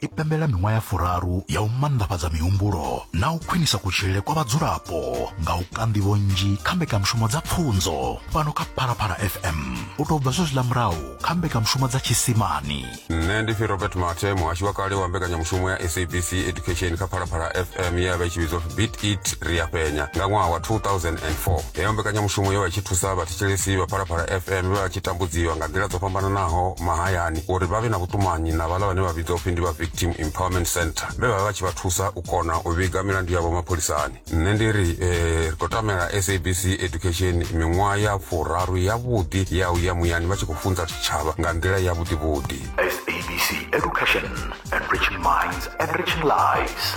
i pembela miṅwaha ya furaru ya u manḓafhadza mihumbulo na u khwinisa kutshilele kwa vhadzulapo nga u ka nḓivho nnzhi kha mbekanyamushumo dza pfunzo fhano kha phalaphala fm u tou bva zwezwiḽa murahu kha mbekanyamushumo dza tshisimani nṋe ndi pfi robert mathe muhashi wa kale wa mbekanyamushumo ya sabc education kha phalaphala fm ye ya vha i tshi vhidzwa pfi bit it ri a penya nga ṅwaha wa 2004 heyo mbekanyamushumo yo vha i tshi thusa vhathetshelesi vha phalaphala fm vhe vha tshi tambudziwa nga nḓila dzo fhambananaho mahayani uri vha vhe na vhuṱumanyi na vhaḽa vhane vha vhidzwa upfi ndi vha victim empowerment center vhe vha vha vha tshi vha thusa u kona u vhiga milandu yavho mapholisani nṋe ndi ri eh, ri khou tamela sabc education miṅwaha ya furaru yavhuḓi ya u ya muyani vha tshi khou funza tshitshavha nga nḓila yavhuḓivhuḓi SABC Education, enriching minds, enriching lives.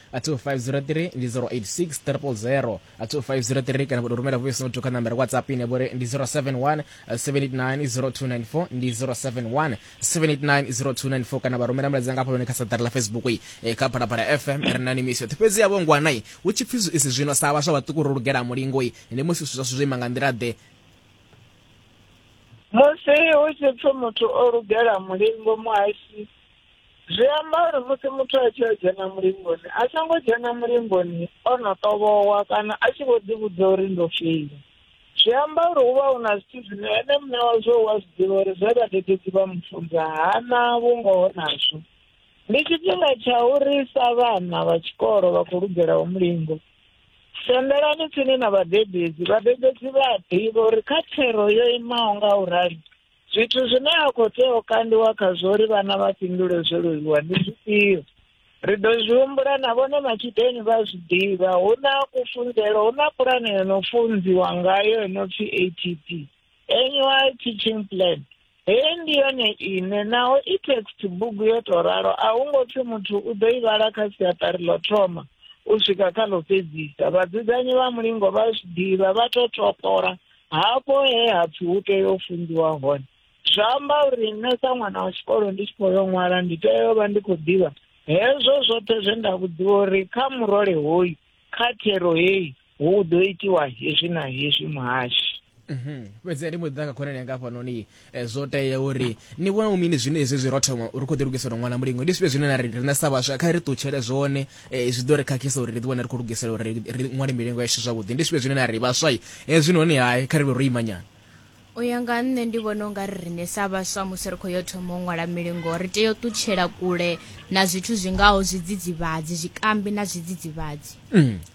a 2503 ndi 086 triple 0 a 2503 kana vhuto rumela voice note kha nambara whatsapp ine vhori ndi 071 7890294 ndi 071 7890294 kana vha rumela mulaedza nga hafhanoni kha saḓari ḽa facebook i eh, kha phalaphala fm ri na ni misio fhedzi yavho ngwanai hu tshi pfi isi zwino sa vhaswa vhaṱuku ro lugela mulingo i ndi musi zwithu zwashu zwo ima nga nḓila ḓe musi hu tshi pfi muthu o lugela mulingo muhasi zwi amba uri musi muthu a tshi yo dzhena mulingoni a songo dzhena mulingoni o no ṱovhowa kana a tshi vho ḓivhudza uri ndo file zwi amba uri hu vha hu na zwithu zwine ene muṋe wazwo wa zwi ḓivha uri zwe vhadededzi vha mufunza hana vhungoho nazwo ndi tshifhinga tsha uri sa vhana vha tshikolo vha khou lugelaho mulingo sendelani tsini na vhadededzi vhadededzi vha a ḓivha uri kha thero yo imaho nga u rali Zwithu zwine a khou tea u kandiwa khazwo uri vhana vha fhindule zwo leluwa ndi zwifhio? Ri ḓo zwi humbula na vhone matshudeni vha zwi ḓivha. Hu na kufunzelo, hu na pulane yo no funziwa ngayo yo no pfi ATP, Annual Teaching Plan. Heyi ndi yone ine naho i text bugu yo tou ralo a hu ngo pfi muthu u ḓo i vhala kha siaṱari ḽo thoma u swika kha ḽo fhedzisa. Vhadzudzanyi vha mulingo vha zwi ḓivha, vha tou topola hafho he ha pfi hu tea u funziwa hone zwa amba uri nṋe sa ṅwana wa tshikolo ndi tshi khou yo ṅwala ndi tea u vha ndi khou ḓivha hezwo zwoṱhe zwe nda vhudziwa uri kha murole hoyu kha thero heyi hu ḓo itiwa hezwi na hezwi muhashi mhm. fhedzi ndi mbo ḓi ḓa kha khonani yanga hafhanoni Eh, zwo tea uri ni vhona mini zwine hezwi zwi ro thoma ri khou ḓi lugisela ṅwana mulingo ndi zwifhio zwine na ri riṋe sa vhaswa kha ri ṱutshele zwone eh, zwi ḓo ri khakhisa uri ri ḓiwane ri khou lugisela uri ri ṅwale milingo yashu zwavhuḓi ndi zwifhio zwine na ri vhaswa hezwi noni hai kha ri vhe ro imanyana u ya nga nṋe ndi vhona u nga ri riṋe sa vhaswa musi ri khou yo thoma u ṅwala milingo ri tea u ṱutshela kule na zwithu zwi ngaho zwidzidzivhadzi zwikambi na zwidzidzivhadzi mm.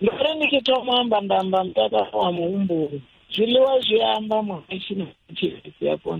Ndo ri ndi tshi thoma u amba nda amba mutakalo wa muhumbulo. Zwiḽiwa zwi amba muhashi na tshilisi ya kona.